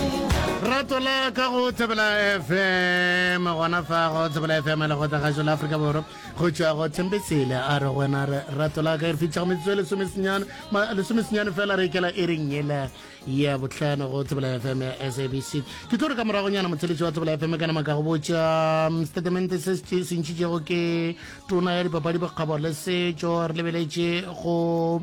Ratola ka go Thebela FM gona fa go Thebela FM le go tla gašo la Afrika Borwa go tšwa go Thembesele a re gona re Ratola ka e re fitlha go metsotso e lesomesenyane ma- lesomesenyane fela re ikela e reng yela ya bohlano go Thebela FM ya SABC ke tlo re ka moragonyana motheletši wa Thebela FM ka nama ka go botša um, statemente se se tše- se ntšhitšego ke tona ya dipapadi bokgabo le setšo re lebeletše go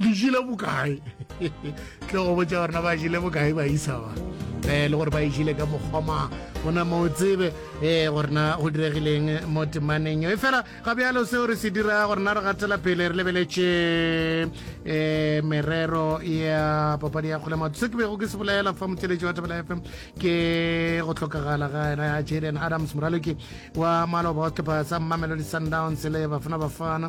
le jile bokae tle go botsa gore na ba jile bokae ba isa ba um le gore ba ejile ka mokgwama gona mo tsebe um gore na go diregileng mo temaneng e fela ga bjalo seo re se dira gore na re gatela pele re lebeletše um merero ya papadi ya kgole matho se ke bego ke se bolela fa motšeletši wa tabela fm ke go tlhokagala ga ena ya jaden adams moraloki wa maloba wa setlhopha sa mmamelodi sundowns le bafana bafana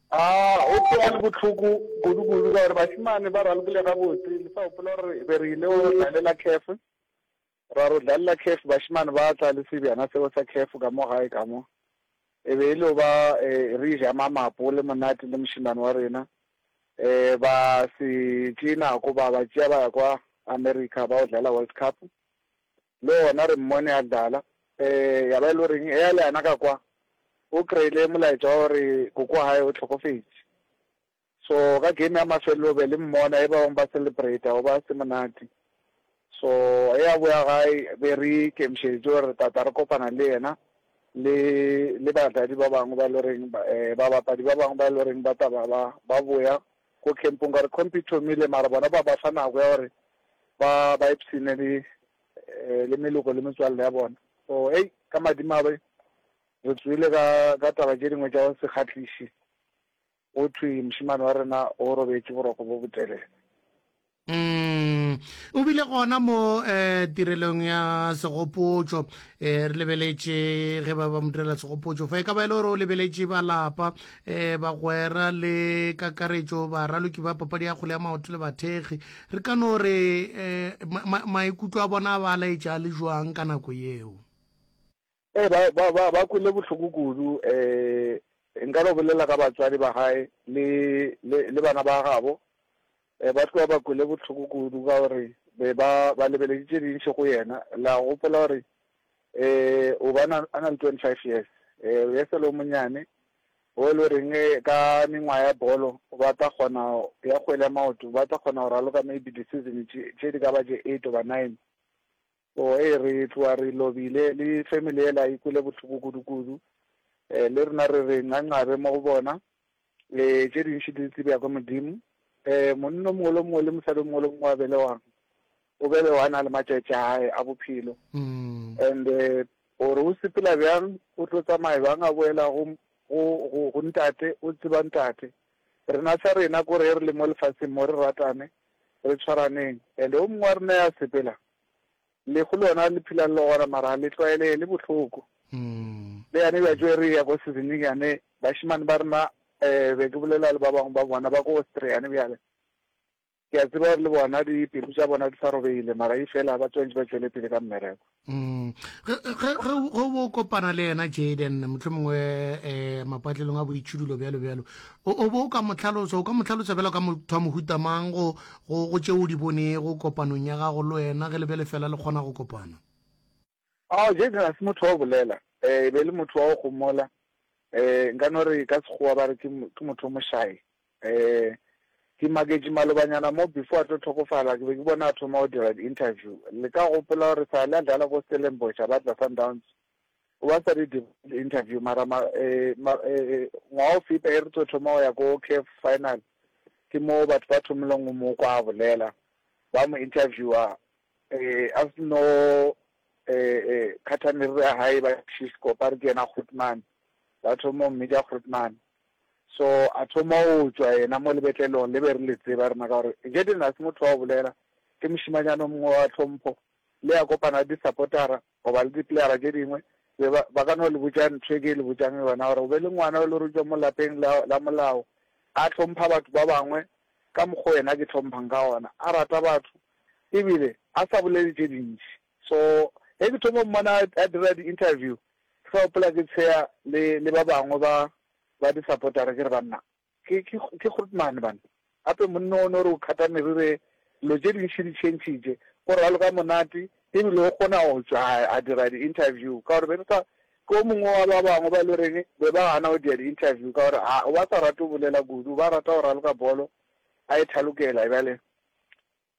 A go tlo ba le bohloko kudukudu ka gore bašemane ba ralokile gabotse. Le sa gopola gore be re ile go dlalela Cafe, ra re go dlalela Cafe bašemane ba tla le sebjana seo sa Cafe ka mo gae ka mo. E be e le yo ba re ja mamapole monate le mošemane wa rena. Ba se tšee nako ba ba tšea ba ya kwa America ba yo dlala World Cup. Le gona re mmone a dlala. Ee, ya ba e le goreng? Eya le yena ka kwa, o kry-ile molaetša wa gore koko wa gae o hlokofetše. So, ka game ya mafelelo be le mmona, e ba bangwe ba celebrata, go ba se monate. So, ge a boya gae, be re ikemišeditše gore tata re kopana le yena, le, le badlali ba bangwe ba e le goreng, ba, um babapadi ba bangwe ba e le goreng ba tla ba, ba, ba boya Ko kempong ka gore khompi e thomile mara bona ba ba fa nako ya gore ba ba ipshine le le meloko le metswalle ya bona. So hei ka madimabe re tsoile ka ka taba tše dingwe tša go se kgahliše go thwe mošemane wa rena o robetše boroko bo botelele. Umm, o bile gona mo tirelong ya segopotšo. Re lebeletše ge ba ba mo direla segopotšo fa. E ka ba e le gore o lebeletše ba lapa, bagwera le kakaretšo, baraloki ba papadi ya kgole ya maoto le bathekgi. Re ka no re maikutlo a bona a ba laetša a le bjang ka nako yeo? Ee, ba, ba, ba, ba kwele bohloko kudu. Um nka no bolela ka batswadi ba gae le, le, le bana ba gabo. Um ba tloga ba kwele bohloko kudu ka gore be ba, ba lebeletše tše dintši go yena. La gopola gore um o ba na, a na le twenty five years, um o e sa le o monnyane, o e le goreng ka mengwaga ya bolo ba tla kgona, ya kgwele ya maoto, ba tla kgona go raloka maybe di-season tše, tše di ka ba tše eight goba nine. O e re tloa re lobile le family yela e kwele bohloko kudu kudu eh, le rena re re ngangabe mo go bona eh, tše dintši di tsebja kwa modimo eh, monna mongwe le mongwe le mosadi mongwe le mongwe a belewang o belewa a na le matšatši a gae a bophelo mm. and eh, gore o sepela bjang o tlo tsamaye bang a boela go go ntate o tseba ntate rena sa rena kore re le mo lefatsheng mo re ratane re tshwaraneng and o mongwe wa rena ya sepela Lehu lona le phela le logora mara le tlwaelege le bohloko. Le yane bja tšwe re ya ko sezining yane bašemane ba rena um be ke bolela le ba bangwe ba bona ba ko Austria yane bjale. Ke a tseba gore le bona dipelo tša bona di sa robegile mara e fela ba tswantšhe ba tšwele pele ka mmereko. Ge ge ge ge o bo kopana le yena Jayden mohlomongwe um mapatlelong a boitšhidulo bjalo bjalo O, o be o ka mo hlalosa, o ka mo hlalosa bjalo ka motho wa mohuta mang, go, go, go tše o di bonego kopanong ya gago le wena, ge le be le fela le kgona go kopana? Oh, Jason ga se motho wa go bolela. E, e be e le motho wa go gomola. E, nka no re ka Sekgowa ba re ke, ke motho o mošayi. E, ke maketše malobanyana mo, before a tlo hlokofala, ke be ke bona a thoma go dira di-interview. Le ka gopola gore sale a dlala ko Stellenbosch, a ba tla Sundowns, o ba sa di interview mara ma, eh, ma, eh, eh ngwaga o feta e re tlo thoma go ya ko CAF final ke moo batho ba thomileng go mo kwa a bolela ba mo interviewa eh a se no eh eh khatha meriri ya hae ba shisko ba re ke yena goodman ba thoma go mmitša goodman so a thoma go tswa yena mo lebetlelong le be re le tseba rena ka gore jedena se motho wa go bolela ke mošimanyana mongwe wa tlhompho le ya kopana disapotara Goba le dipleara tše dingwe, be ba, ba ka no le botša nthwe ke le botšang yona, gore o be le ngwana yo e le gore o tšwa mo lapeng la, la molao, a hlompha batho ba bangwe ka mokgwa o yena a ke hlomphang ka gona, a rata batho, ebile a sa bolele tše dintši. So, ge ke thoma go mmona a, a dira di-interview, ke sa gopola ke tsheya le, le ba bangwe ba, ba di-supporter-a, ke re, Banna! Ke, ke, ke Grootman, banna. Gape monna o no re o kgata meriri e, dilo tše dintši di tšhentšhitše. O raloka monate, e bile o kgona go tšwa a, a dira di-interview, ka gore be re sa, ke o mongwe wa ba bangwe ba e le reng be ba gana go dia di-interview, ka gore a, o ba sa rate go bolela kudu, o ba rata go raloka bolo, a e thalokela. Bjale,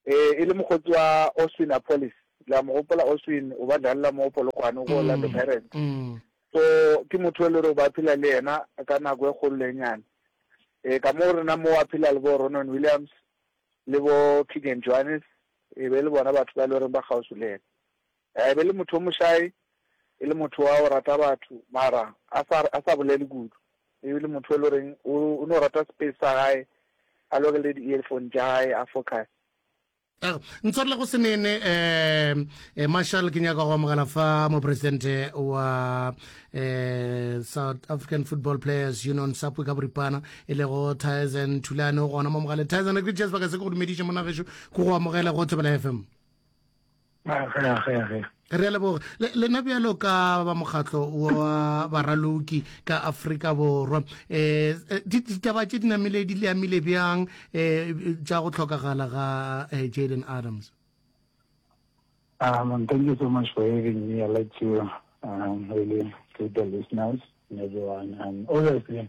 Ee, e le mokgotsi wa Austin Apolis. La mo gopola Austin, o ba dlalela mo Polokwane go Orlando mm, Pirates. Mm. So ke motho e le gore ba phela le yena ka nako e kgolo le nyane. Eh ka mo rena mo a phela le bo Ronon Williams le bo Keegan Johannes e be le bona batho ba le gore ba gausu le yena. A e be e le motho yo mošae, e le motho wa go rata batho mara a sa, a sa bolele kudu. E be e le motho yo e le goreng o, o no rata space sa gae, a lokele di-earphone tša gae a focuse. A re, Ntshwarele go se nene, um Marshal, ke nyaka go amogela fa Mopresidente wa um South African Football Players Union, SAFPU ka boripana, e lego Thaezen Thulane, o gona mo mogaleng. Thaezen, re ke Jazz Baka se ke go dumediše monna gešo, ke go amogele go Thobela FM. Re a leboga. Le, lena bjalo ka ba mokgatlo wa baraloki ka Afrika Borwa, um ditaba tše di namile di le amile bjang um tša go hlokagala ga Jayden Adams? Um, thank you so much for having me. I'd like to um, really greet the listeners and everyone. Um, obviously,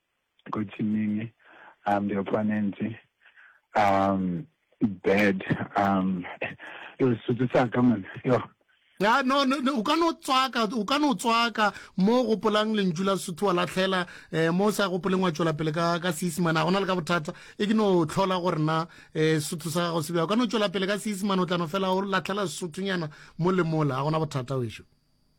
Kotsiming, um, the opponent, um, bad, um, yo, Sotho sa ka man, yo. Ya, no, no, no, o ka no tswaka, o ka no tswaka, mo gopolang lentšu la Sotho wa latlhela, eh, mo sa gopoleng wa tšwela pele ka, ka Seisimane, ga gona le ka bothata, e ke no tlhola gore na, eh, Sotho sa gago se bja, o ka no tšwela pele ka Seisimane, o tla no fela o latlhela Sotho nyana, mo le mola, ga gona bothata wešo.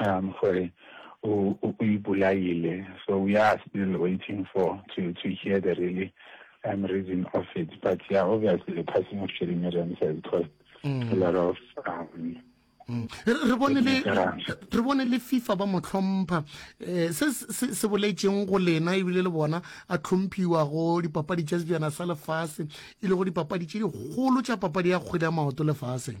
um gore o o o ipolaile so we are still waiting for to to hear the really um reason of it but yeah obviously the passing of Sherry Miriam has caused mm. a lot of um Mm. re bone le re bone le FIFA ba mo tlhompha eh se se boletseng go lena e bile le bona a tlhomphiwa go dipapadi tša sejana sa lefase e le go dipapadi tše digolo tša papadi ya kgwele ya maoto lefaseng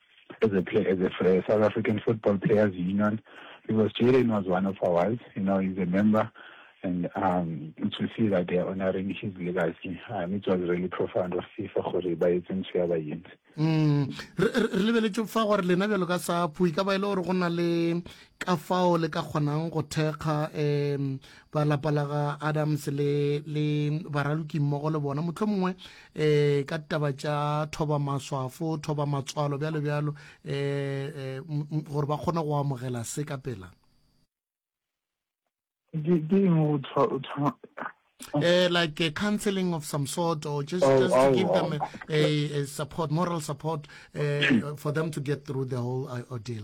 as a player, as a fre, South African Football Players Union, because Jaden was one of ours, you know, he's a member, and um, to see that they are honoring his legacy, um, it was really profound of FIFA gore ba etse ntho ya ba yentse. Mm. re lebeletse fa gore lena bjalo ka sa phui ka ba e le gore go na le ka fao le ka kgonang go thekga um ba lapa la ga adams le le baraloki mmogo le bona motlho mongwe e ka ditaba tša thoba maswafo thoba matswalo bjalo bjalo e gore ba kgone go amogela se ka pela Uh, like a counseling of some sort or just, oh, just oh, to give them a, a, a support moral support uh, for them to get through the whole uh, ordeal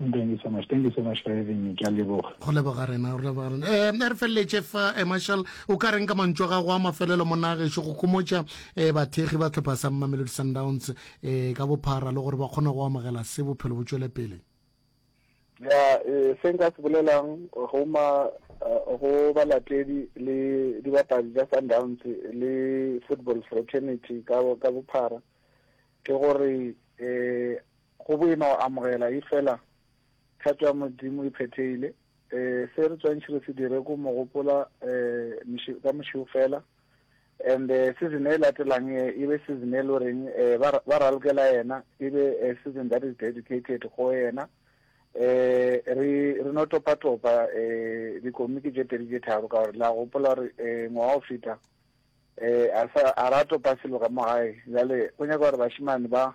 Thank you so much. Thank you so much for having me. Ke a leboga. go leboga rena go leboga rena eh re feleletše fa eh, marshal o ka reng ka mantšu a gago a mafelelo mo nagešo go khomotša eh bathekgi ba tlhopha sa mamelodi sundowns eh ka bophara le gore ba kgone go amogela se bophelo bo tšwele pele ya eh, se nka se bolelang go ma eh, go balatedi le dibapadi tša sundowns le football fraternity ka ka bophara ke gore eh Go boima go amogela, efela thato ya Modimo e phethegile. Se re tswantšhi re se dire ko mo gopola ka mošego fela. And season e latelang e e be season e le reng ba ralokela yena, e be season that is dedicated go yena. Re re no topa topa dikomiki tše pedi tše tharo ka gore la gopola gore ngwaga o feta a ra topa selo ka mo gae. Bjale go nyaka gore bašemane ba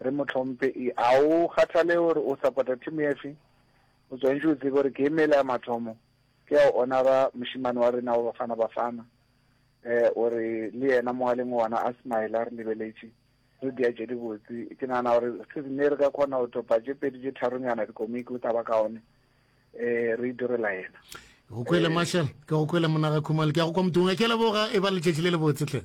Re mo tlhomphe i. A o kgathale gore o sapota thimo efe? O tswantšwe o tsebe gore ke e mela ya mathomo ke ya go onara mošemane wa rena wa Bafana Bafana. E, o re le yena mogaleng o gona a smile a re lebeletše. Re dia tše dibotse. Ke nagana gore se re ne re ka kgona go thopa tše pedi tše tharonyana dikomiki o tla ba kaone. E, re idirela yena. Go kwele Marshall, ke go kwele Monaga Khumalo, ke ya go kwa Mdunga. Ke a leboga, e ba letšatši le lebotse hle.